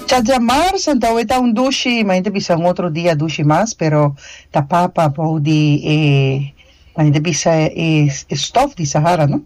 Chacha mar sentao e ta un dushi ma gente bisa un otro dia dushi mas pero ta papa bou di e nan gente bisa e stof di sahara no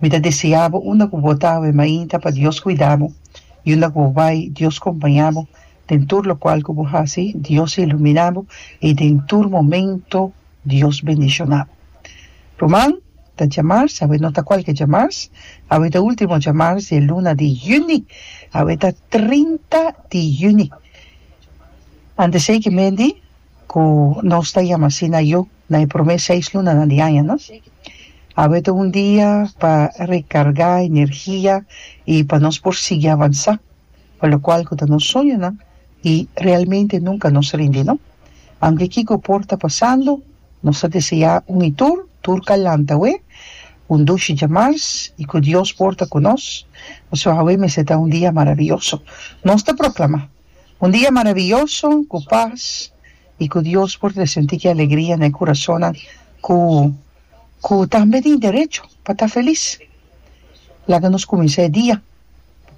mi ta desia bo unda cu bo ta awe mainta pa Dios cuida bo y unda cu bo bay Dios compaña bo den tur locual cu bo haci Dios ilumina bo y den tur momento Dios bendiciona. Ruman ta djamars, awe no ta cualke djamars, awe ta ultimo djamars di e luna di juni, awe ta trinta di juni. Antes ey ki mendi cu nos ta yama asina yu na e prome seis lunanan di aña no. Awe ta un dia pa recarga energia y pa nos por sigui avansa. Pa lokual ku ta nos soñonan i realmente nunka nos rindi no. Anto kiko por ta pasando, nos ta deseá un i tur, tur kalanta we, un dushi djamars i ku Dios por ta ku nos, pasobra awe mester ta un dia maravioso. Nos ta proklamá un dia maravioso ku pas i ku Dios por ta sentí ki alegria na e kurasonnan ku ku tambe tin derecho pa ta felis. Laga nos kuminsá e dia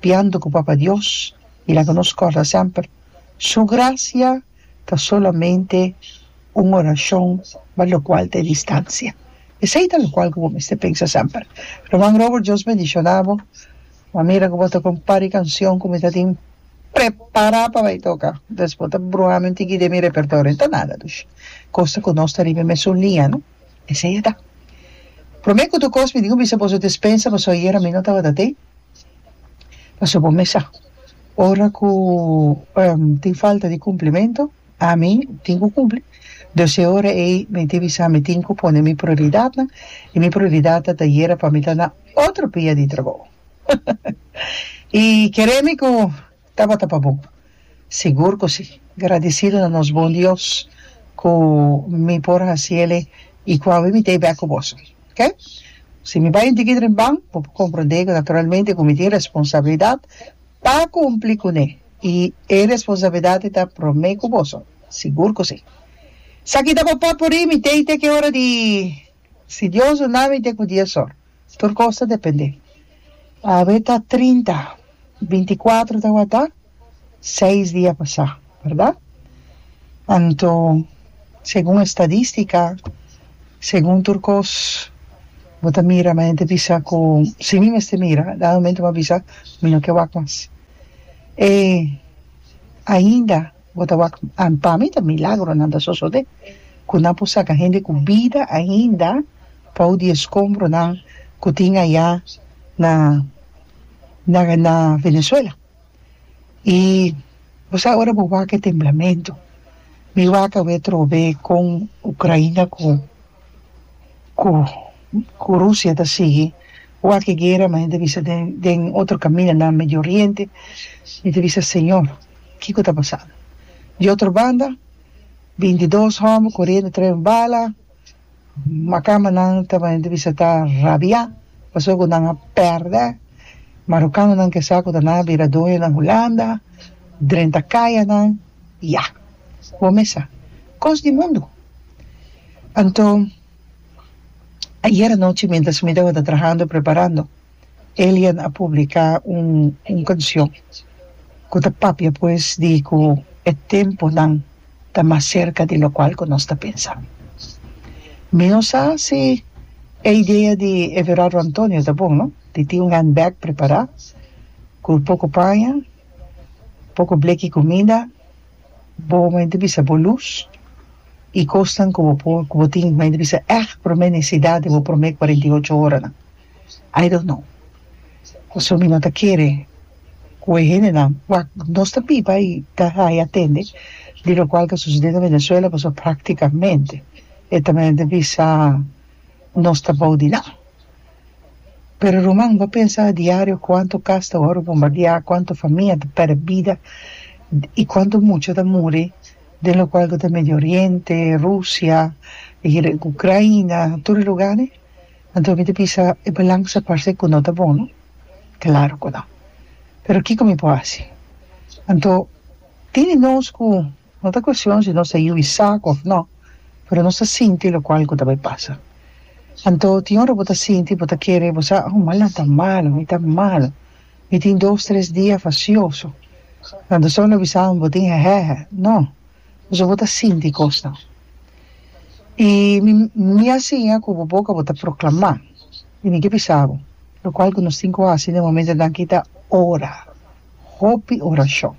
biendo cu Papa Dios mira cu nos corda semper su gracia ta solamente un oracion ma locual ta e distancia. Esey ta locual cu bo mester pensa semper. Ruman Robert Dios bendiciona bo ma mira cu bo toca un par di cancion cu mi ta tin prepara pa bay toca entonces bo ta bruhami un tiki di mi repertorio ta nada dushi cosa cu nos ta riba e mesun liña no. Esei e ta. Prome ku Dukos mi diku bisa boso despensa paso ayera mi no tabata tei. Paso bo me sa ora ku tin falta di kumplimento ami tin ku kumpli dus e ora ei mi tin bisa mi tin ku pone mi prioridatnan i mi prioridatnan ta yera pa mi ta na otro bia di trabou. I kere mi ku Tabata pa bo? Sigur ku si! Gradisidu na nos bon Dios ku mi por hasi el e i ku a win mi ta e bèk ku boso. K, Si mi bai un tiki dren ban, bo por komprondé ku naturalmente ku mi tin responsabilidat pa kumpli kuné, i e responsabilidat ei ta promé ku boso. Sigur ku si! Esaki ta bo papuri mi tei te ke ora di, si Dios duna mi te ku dies or. Tur kos ta dependé. Awe ta trinta, binti kuater tawata seis dia pasá, berda? Anto segun estadístika, segun tur kos bo ta mira mi ta bisa ku si mi mester mira dal momento mi a bisa mi no ke wak mas. E ainda. Bo ta wak and pa mi ta milagronan ta sosode ku nan por saka hende ku bida ainda pau di e skombronan ku tin aya na na na Venezuela i bo sa ora bo wak e temblamentu mi wak awe trobe kon Ukraina ku. cu cu Rusia ta sigui wak e guera mas mi ta bisa den den otro camina na Medio Oriente mi ta bisa Señor kico ta pasando di otro banda binti dos homber coriendo tres un bala macamanan ta mi ta bisa ta rabia pasobra nan a perde marocanonan ke sa cu ta nan a bira doño na Hulanda drenta cayanan ya bo me sa cos di mundo. Anto, ayer anochi mientras mi tabata trahando, preparando, Elian a publica un un cancion cu ta papia pues di cu e temponan ta mas cerca di locual cu nos ta pensa. Mi no sa si e idea di Everardo Antonio ta bon, no? Di tin un handbag prepara cu poco paña, poco bleki comida, Bo mai ta bisa bo lus i kosnan ku bo por ku bo tin mai ta bisa ègt promé nesesidat di bo promé kuarenta i ocho oranan. I don't know. Pasobra mi no ta kere ku e hendenan wak nos ta biba i ta haya tende di lokual ta susede na Venezuela pasobra praktikamente e ta mester bisa nos ta abou di nan. Pero ruman, bo pensa adiario kuantu kas ta wòrdu bombardiá, kuantu famia ta pèrdè bida i kuantu mucha ta muri, den lokual ku ta Medio Oriente, Rusia, Ukraina, tur e lugá dei? Anto mi ta bisa e balans ta parse ku no ta bon, no? Klaru ku no. Pero kiko mi por hasi? Anto, tin di nos ku No ta cuestion si nos ta hui saco of no, pero nos ta sinti locual cu ta bay pasa. Anto tin ora bo ta sinti bo ta kere bo sa, Oh, manan ta malo, mi ta malo, mi tin dos, tres dia facioso, anto so lo bisanan bo tin hehehe. No, pasobra bo ta sinti cosnan. Y mi, mi a siña cu bo boca bo ta proclama, y mi ke bisa bo locual cu nos tin cu haci den momentonan aki ta ora. hopi orashon.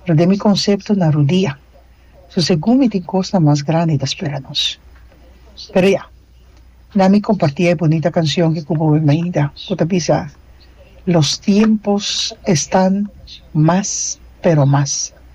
Pero den mi konsepto na rodia. So segun mi tin kosnan mas grandi ta spera nos. Pero ya, na mi kompartí e bonita kanshon ke ku bo a mainda ku ta bisa, Los tiempos están más, pero más.